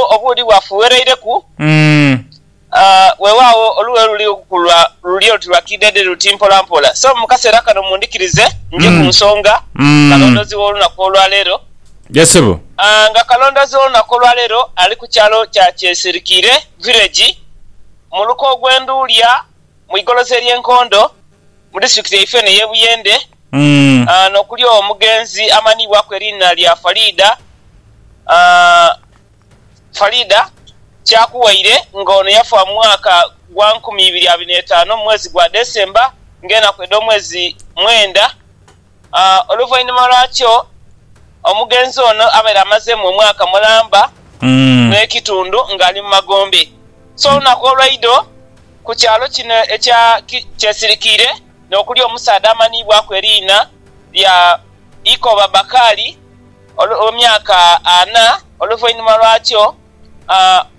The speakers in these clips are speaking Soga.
obuudhi bwafughereireku, weewaawo olughe luli okukulwa luli oluti lwa kiidheedhe luti mpola mpola. So mu kaseera kano mundhikirize nje ku nsonga kalondoozi w'olunaku olwaleero. Nga kalondoozi w'olunaku olwaleero ali ku kyalo kya Kyesirikiire Village mu luka ogw'e Nduulya. mu igolosa ery'e Nkondo mu disitulikiti yaife eno ey'e Buyende n'okuli omugenzi amanhiibwaku eriina lya Faridah Faridah Kyakuwaire nga ono yafa mu mwaka gwa nkumi ibiri abiri n'etaanu mu mwezi gwa December ng'enaku edh'omwezi mwenda. Oluvainhuma lwakyo, omugenzi ono abaire amaze mu omwaka mulamba n'ekitundu nga ali mu magombe. So olunaku olwaidho ku kyalo kino ekya Kyesirikiire n'okuli omusaadha amanhiibwaku eriina lya Ikoba Bakali ow'emyaka ana. Oluvainhuma lwakyo.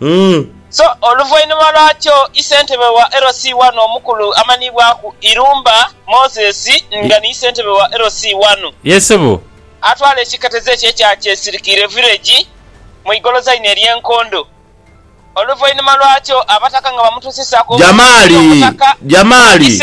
Umm. So oluvainhuma lwakyo isentebe wa LC wano omukulu amanhibwaku Irumba Moses nga ni isentebe wa LC wano. Ye sebo. Atwala ekiketezo ekyo ekya Kyesirikire Village mu igolozaine erye Nkondo. Oluvainhuma lwakyo abataka nga bamutusisaku Jamali! Jamali!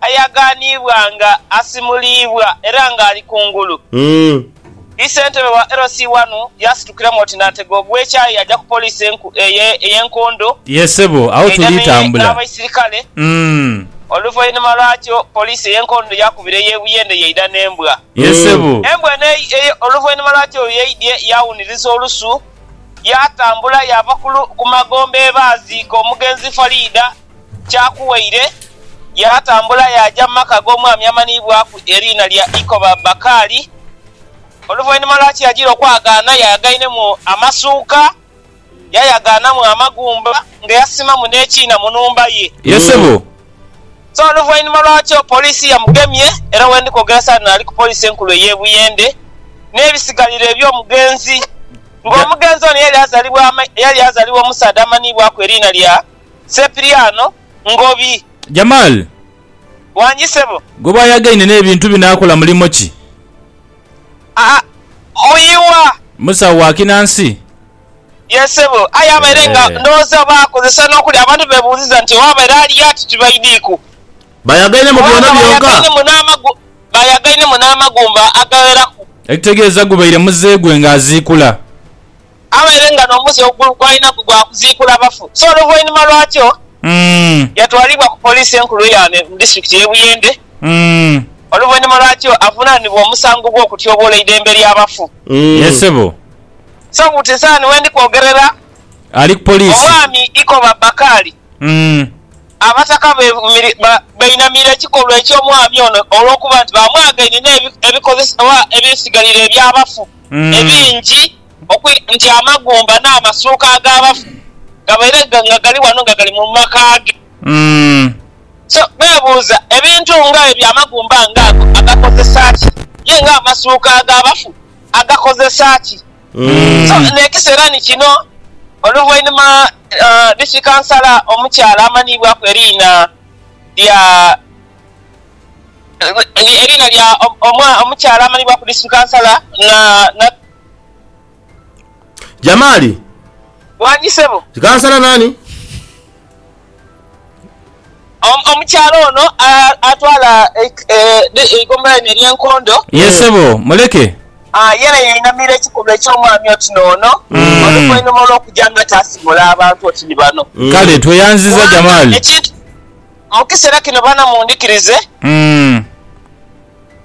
ayagaaniibwa nga asimuliibwa era nga ali kungulu. Vii Ssentebe wa LC wanu yaasitukiramu oti naatega ogw'ekyayi yaja ku poliisi enku eye ey'e Nkondo Ye sebo, agho tuli eyamye tambula. n'abaisirikale. Umm. Oluvainuma lwakyo poliisi ey'e Nkondo yaakubira ey'e Buyende yaidha n'embwa. Ye sebo. Embwa eno ei ei oluvainuma lwakyo bwe yaidhie yaawuniriza olusu, yaatambula yaava ku lu ku magombe baaziika omugenzi Faridah. Kyakuwaire yaatambula yaaja mu maka ag'omwami amanhibwaku eriina lya Ikoba Bakali. Oluvainhuma lwa Kiragira okwagaana, yayagainemu amasuuka, yayagaanamu amagumba nga yasimamu n'ekiina mu nhumba ye. Ye ssebo. So oluvainhuma lwakyo poliisi yamugemye era wendi kwogera saano ali ku poliisi enkulu ey'e Buyende n'ebisigalira eby'omugenzi. Ng'omugenzi ono yali azalibwa yali azalibwa omusaadha amanhibwaku eriina lya. Sepiriano Ngobi. Jamal. Wangi sebo. Gwe bwayagaine nebintu bino akola mulimo ki? Aa muyiwa. Musawo wa kinansi? Yes sebo aye abaire nga ndowooza oba akozesa nokuli abantu bebuuziza nti oba abaire ali yati tibaidiku. Bayagainemu byona byonka? Bayagainemu n'amagumba agagheraku. Ekitegeeza gubaire muze gwe nga aziikula. abaire nga n'omuze gw'alinaku gwa kuziikula bafu. So oluvainhuma lwakyo, yatwalibwa ku Poliisi Enkulu eya Ame mu Disitulikiti y'e Buyende oluvainhuma lwakyo avunaanibwe omusango gw'okutyoboola eidembe ly'abafu. Ye sebo. So buti nsaani wendi kwogerera, Ali ku Poliisi. Omwami Ikoba Bakali, Abataka bainamira ekikolwa eky'omwami ono olw'okuba nti bamwagaine n'ebikozesebwa ebisigalira eby'abafu ebingi. Okwidha nti amagumba n'amasuuka ag'abafu gabaire nga gali wano nga gali mu maka ge. So beebuuza, Ebintu nga ebyo amagumba nga ago agakozesa ki? Ye nga amasuuka ag'abafu agakozesa ki? So n'ekiseera ni kino, oluvainhuma Disitiki Kansala omukyala amanhiibwaku eriina lya. Eriina lya omukyala amanhibwa ku District Councillor Nat. Jamali. Wangi ssebo. Kansala nani? Omukyala ono atwala eigombolola lino erye Nkondo. Yee ssebo muleke. Yena yainamira ekikolwa eky'omwami oti n'ono oluvainhuma olw'okuja nga taasimula abantu oti ni bano. Kale tweyanziza Jamali. Mukisera kino bana mundhikirize.